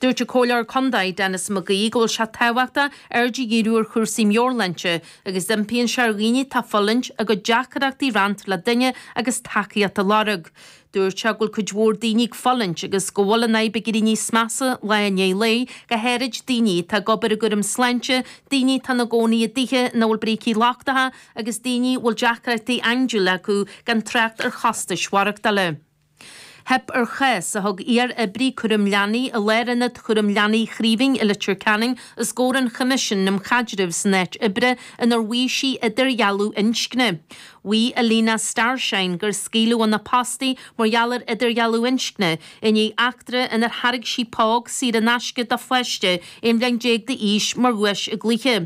Dúirt an Comhairleoir Condae Denis McGee go bhfuil sé tábhachtach aird a dhíriú ar chúrsaí meabhairshláinte agus d'impíonn sé ar dhaoine atá ag fulaingt a gcuid deacrachtaí a roinnt le duine agus tacaíocht a lorg. Dúirt sé go bhfuil cuid mhór daoine ag fulaingt agus go bhfuil an fhadhb ag éirí níos measa lá i ndiaidh lae, go háirid daoine atá ag obair i gcúram sláinte, daoine atá ina gcónaí i dtithe ina bhfuil brící lochtacha agus daoine a bhfuil deacrachtaí andúile acu gan trácht ar chostais mhaireachtála. Theip ar chás a thug iar-oibrí cúraim leanaí i Lárionad Cúraim Leanaí Chraoibhín i Leitir Ceanainn os gcomhair an Choimisiúin um Chaidreamh san Áit Oibre inar mhaígh sí idirdhealú inscne. Mhaígh Alina Starshine gur scaoileadh óna post í mar gheall ar idirdhealú inscne i ndiaidh eachtra inar thairg sí póg saor in aisce do pháiste 11 bhliain d'aois mar dhuais i gcluiche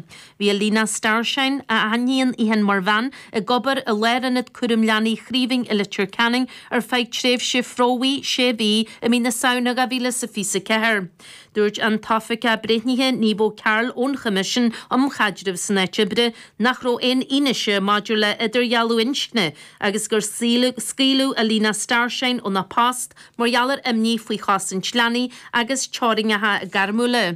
Bhí Alina Starshine, a aithníonn í féin mar bhean, ag obair i Lárionad Cúraim Leanaí Chraoibhín i Leitir Ceanainn ar feadh tréimhse phromhaidh sé mhí i mí na Samhna 2024. Dúirt an tOifigeach Breithnithe Niamh O'Carroll ón Choimisiún um Chaidreamh san Áit Oibre nach raibh aon fhianaise maidir le idirdhealú inscne agus gur scaoileadh Alina Starshine óna post mar gheall ar imní faoi chosaint leanaí agus teorainneacha gairmiúla.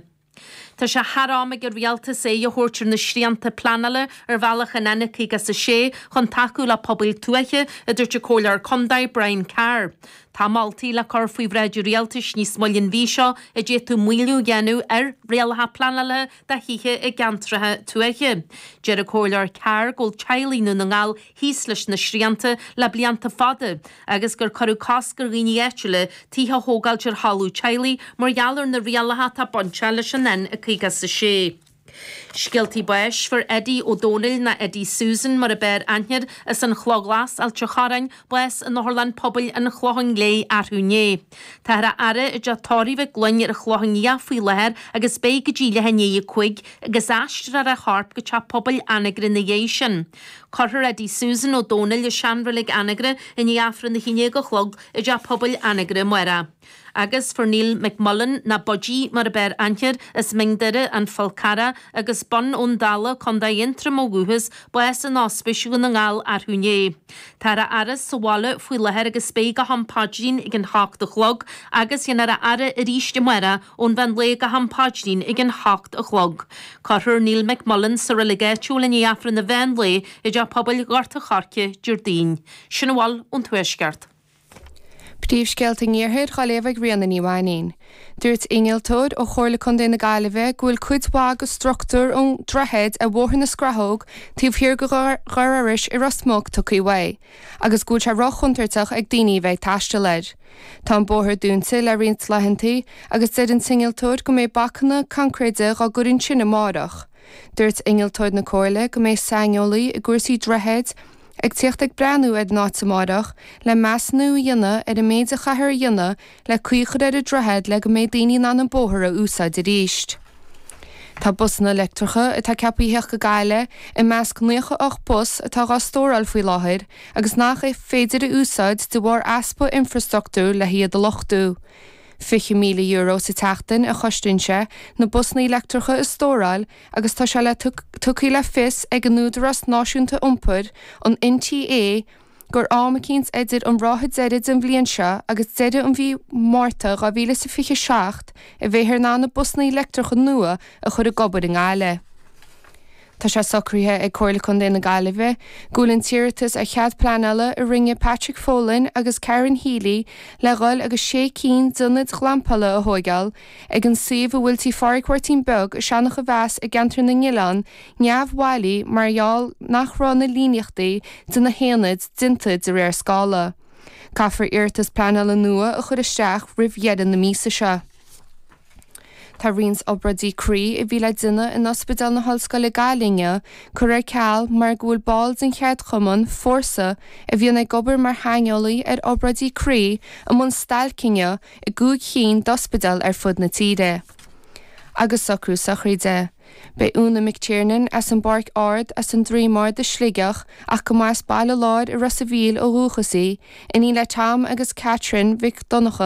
Tá sé thar am ag an Rialtas aghaidh a thabhairt ar na srianta pleanála ar bhealach an N56 chun tacú le pobail tuaithe, a dúirt an Comhairleoir Contae, Brian Carr. Tá moltaí le cur faoi bhráid an Rialtais níos moille an mhí seo a d'fhéadfadh maolú a dhéanamh ar rialacha pleanála do thithe i gceantracha tuaithe. Deir an Comhairleoir Carr go bhfuil teaghlaigh Dhún na nGall thíos leis na srianta le blianta fada agus gur cuireadh cosc ar dhaoine áitiúla tithe a thógáilt ar thalamh teaghlaigh mar gheall ar na rialacha atá bainteach leis an N56. Scéaltaí Báis Fuair Eddie Ó Dónaill, nó Eddie Susan mar ab fhearr aithne air as an Chloch Ghlas, Ailt an Chorráin, bás in Otharlann Pobail an Chlocháin Léith, arú inné. Táthar á fhaire i dTeach Tórraimh Mhig Fhloinn ar an Chlochán Liath faoi láthair agus beidh go dtí leath i ndiaidh a cúig, agus aistreofar a chorp go Teach Pobail Anagaire ina dhiaidh sin. Cuirfear Eddie Susan Ó Dónaill i seanreilig Anagaire i ndiaidh Aifreann a haon déag a chlog i dTeach Pobail Anagaire, amárach. Agus fuair Neil McMullan, nó Budgie mar ab fhearr aithne air, as Mín Doire, An Fál Carrach, agus Bun Abhann Dalla, Co Aontroma ó dhúchas, bás in Ospís Dhún na nGall arú inné. Táthar á fhaire sa bhaile faoi láthair agus beidh go ham paidrín ag a hocht a chlog agus déanfar é a fhaire arís amárach ón mheán lae go ham paidrín ag a hocht a chlog. Cuirfear Neil McMullan sa reilig áitiúil i ndiaidh Aifreann an mheán lae i dTeach Pobail Ghort a' Choirce, Déardaoin. Sin a bhfuil ón Tuaisceart. Príomhscéalta an Iarthair dhá léamh ag Ríona Ní Mhainín. Dúirt innealtóir ó Chomhairle Contae na Gaillimhe go bhfuil cuid mhaith de struchtúr an droichid ar Bhóthar na Scrathóg taobh thiar de Dhoire Iorrais i Ros Muc tugtha uaidh agus go bhfuil sé rochontúirteach ag daoine a bheith ag taisteal air. Tá an bóthar dúnta le roinnt laethanta agus deir an t-innealtóir go mbeidh bacanna concréide dhá gcur ansin amárach. Dúirt innealtóir na Comhairle go mbeidh saineolaí i gcúrsaí droichid, Ag tíocht ag breathnú ar an áit amáireach, le measúnú a dhéanamh ar an méid a chaithfear a dhéanamh le caoi a chur ar an droichead le go mbeidh daoine in ann an bóthar a úsáid arís. Tá busanna leictreacha, atá ceapaithe a thíocht go Gaillimh, i measc nócha ocht bus atá dhá stóráil faoi láthair agus nach é féidir a úsáid de bharr easpa infrastructúir le hiad a luchtú. €20,000 sa tseachtain a chosnaíonn sé na busanna leictreacha a stóráil, agus tá sé le tugtha le fios ag an Údarás Náisiúnta Iompair, an NTA, gur am eicínt idir an ráithe deiridh den bhliain seo agus deireadh an mhí Márta 2027 a bheifear in ann na busanna leictreacha nua a chur ag obair i nGaillimh. Tá sé socraithe ag Comhairle Contae na Gaillimhe go bhfuil an t-iarratas ar chead pleanála a rinne Patrick Folan agus Karen Healy le dhul agus sé cinn d'ionaid ghlampála a thóigeáil Ag an suíomh a bhfuil Tí Pháraic Mháirtín Beag i Seanachomheas i gceantar na nOileán neamhbhailí mar gheall nach raibh na líníochtaí de na haonaid déanta de réir scála. Caithfear iarratas pleanála nua a chur isteach roimh dheireadh na míosa seo. Tá roinnt obráidí croí a bhí le déanamh in Ospidéal na hOllscoile Gaillimh inniu curtha ar ceal mar go bhfuil baill den cheardchumann, Fórsa, a bhíonn ag obair mar shaineolaithe ar obráidí croí, i mbun stailc inniu i gcúig chinn d'ospidéil ar fud na tíre. Agus socrú sochraide. Beidh Úna McTiernan, as an bPáirc Ard, as an Droim Ard i Sligeach ach go mba as Baile Láir i Ros a' Mhíl ó dhúchas í, iníon le Tom agus Catherine Mhic Dhonncha,